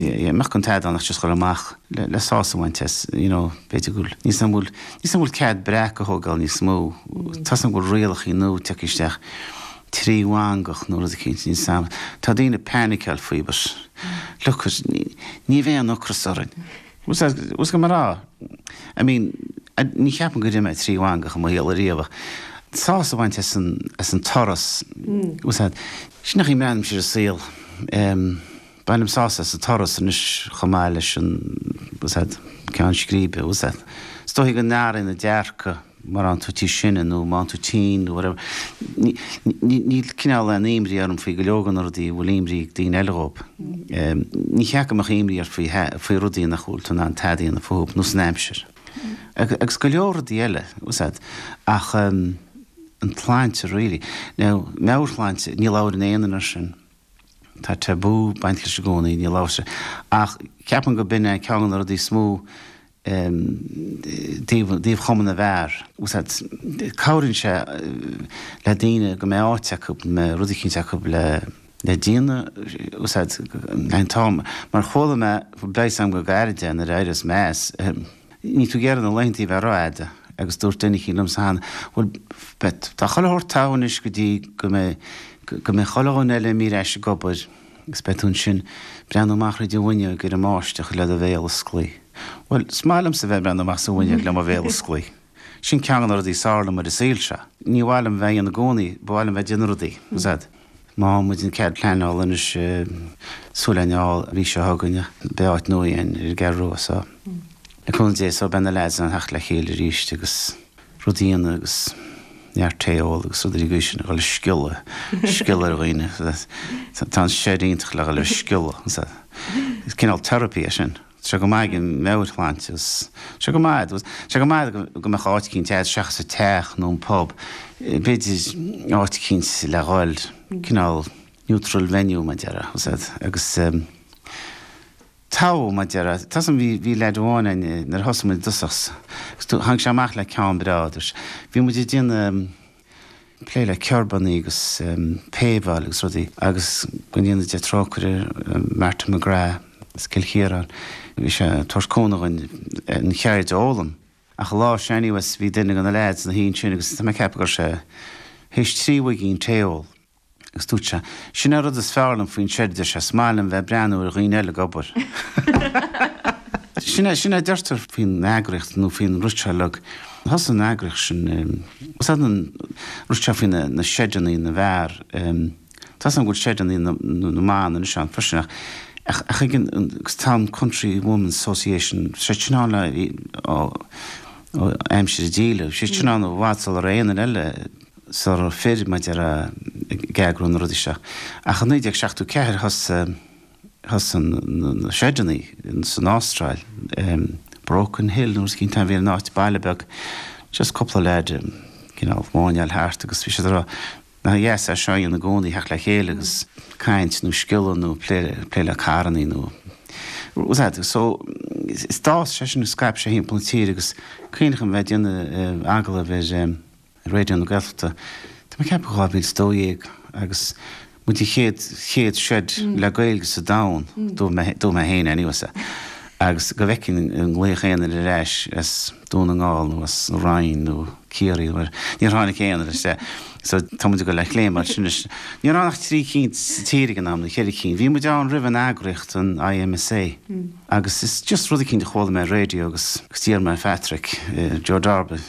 you mbeadh an t-eadán ach just a dhul amach le le sásamh a bhaint as you know b'fhéidir go bhfuil níl a fhios a'm an bhfuil níl a fhios a'm an bhfuil cead breac a thógáil níos mó tá a fhios a'm go bhfuil rialachaí nua ag tíocht isteach trí mhangach nó rud eicínt níl a fhios a'm tá daoine painiceáil faoi but look it ní ní bheidh aon ocras orainn bhfuil a fhios a'd was go mar á I mean ní cheapaim gur ith mé trí mhangach i mo shaol ariamh ach sásamh a bhaint as an as an turas bhfuil a fhios a'd sin é an chaoi a mbreathnaímse ar an saol um Bainim sásamh as an turas anois chomh maith leis an gceann scríbe. Is dóigh go n-athraíonn an dearcadh mar a fhaigheann tú níos sine nó má fhaigheann tú tinn nó whatever. Níl cineál aon imní orm faoi go leor de na rudaí a bhfuil imní ag daoine eile dhóibh. Ní cheart go mbeadh imní ort faoi rudaí nach bhfuil tú in ann tada a dhéanamh fúthu, nós an aimsir. Agus go leor rudaí eile, ach an tsláinte really. Now, meabhairshláinte, ní labhaireann aon duine air sin. Tá tabú baint leis i gcónaí, níl amhras ar. Ach ceapaim gur b'in é ceann de na rudaí is mó i dtaobh chumann na bhfear. Bhfuil a fhios a'd. Cabhraíonn sé le daoine go mbeidh áit acu, go mbeidh rud eicínt acu le déanamh. Bhfuil a fhios a'd. Mar chuala mé, beidh a fhios a'm go gairid é nuair a éireos mé as, ahem. Níl tú ag iarraidh na laethantaí a bheith rófhada agus dúirt duine eicínt liomsa cheana, Bhuel, Pet, tá chuile shórt togha anois go dtí go mbeidh, go mbeidh chuile dhuine eile imithe ar ais ag obair agus beidh tú ansin ag breathnú amach tríd an bhfuinneoig ar an mbáisteach le do bhéal osclaithe. Bhuel, is maith liomsa bheith ag breathnú amach sa bhfuinneoig le mo bhéal osclaithe. Sin ceann de na rudaí is fearr liom ar an saol seo. Ní mhaith liom bheith á dhéanamh i gcónaí, ba mhaith liom bheith ag déanamh rudaí, bhfuil a fhios a'd. Má fhaigheann muid an cead pleanála anois, súil lena fháil an mhí seo chugainn, beidh áit nua a'inn ar an gCeathrú Rua so, le cúnamh Dé so, beidh na lads in ann a theacht le chéile arís agus rudaí a dhéanamh agus neart tae a ól agus rudaí ar an gcaoi sin a dhul ag sciolladh, sciolladh ar dhaoine. Tá an shed iontach le dhul ag sciolladh, is cineál therapy é sin. Sé go maith ag an meabhairshláinte agus sé go maith sé go maith go mbeadh áit éicínt a'd seachas an teach nó an pub, b'fhéidir áit éicínt le dhul, cineál neutral venue mar a déarfá agus ehm tá mar a déarfá, tá a fhios a'm bhí, bhí leaid amháin a'inn nuair a thosaigh muid i dtosach agus tháinig sé amach le ceann breá, dúirt sé, bhí muid ag déanamh. plé le kerbannaí agus paveáil agus rudaí agus go ndéana Dia trócaire ar Martin McGrath as Cill Chiaráin, bhí sé ag tabhairt cúnamh dhúinn an cheird a fhoghlaim. Ach an lá sin anyways bhí duine de na lads ina shuí ansin agus tá mé ag ceapadh go raibh sé théis trí mhuigín tae a ól, Agus dúirt sé, Sin an rud is fearr liom faoin seid, dúirt sé, is maith liom bheith ag breathnú ar dhaoine eile ag obair. Sin é, sin é a deirtear faoin eagraíocht nó faoin ritual log. Thosaigh an eagraíocht sin, is é an ritual faoi na seideanna na bhfear, tá a fhios agam go bhfuil seideanna na mban anois ann freisin ach, ach, ach ag an am, agus tá an Country Women's Association, tá sé sin ann ó aimsir an díleá, bhí sé sin ann i bhfad sula raibh aon duine eile, sula raibh fir maidir a ag eagrú na rudaí seo. Ach i 1974 thosaigh thosaigh na seideanna san Astráil, Broken Hill nó rud eicínt ann, bhí an áit baile beag, just cúpla leaids ag cineál máinneáil thart agus bhí siad ag rá nach dheas é seo a dhéanamh i gcónaí, theacht le chéile agus caint nó sciolladh nó plé plé le carrannaí nó rud so d'fhás sé sin agus scaip sé thimpeall na tíre agus cuimhním bheith ag déanamh agallaimh ar, Raidió na Gaeltachta, tá mé ag ceapadh, 2012 agus muid an chéad, chéad seid le Gaeilge sa domhan, dúirt mé, dúirt mé féin anyway, sea, agus go bhfeicfinn an nglaofadh aon duine ar ais as Dún na nGall nó as an Rinn nó Ciarraí nó whatever, níor tháinig aon ar ais, sea. So tá muid ag dul le chéile mar sin anois. Ní raibh ann ach trí cinn sa tír ag an am, nó cheithre cinn. Bhí muid ann roimh an eagraíocht, an IMSA, agus is just rud eicínt a chuala mé ar raidió agus agus d'iarr mé ar Phatrick, Joe Darby,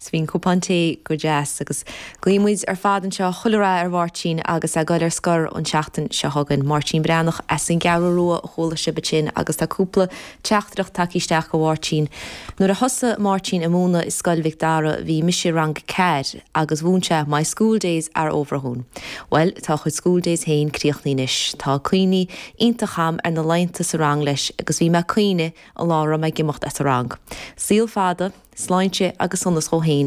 Is bhí an cupán tae go deas, agus guíonn muid ar fad anseo chuile rath ar Mháirtín agus é goil ar scor an tseachtain seo chugainn. Máirtín Breathnach as an gCeathrú Rua a chuala sibh ansin agus tá cúpla teachtaireacht tagtha isteach go Mháirtín. Nuair a thosaigh Máirtín ag múineadh i Scoil Mhic Dara bhí mise i rang a ceathair agus mhúineadh sé My School Days are Over dhúinn. Bhuel, tá a chuid School Days féin críochnaithe anois. Tá cuimhne iontach agam ar na laethanta sa rang leis agus bhí mé ag caoineadh An lá a raibh mé ag imeacht as an rang. Saol fada, sláinte agus sonas dhó fhéin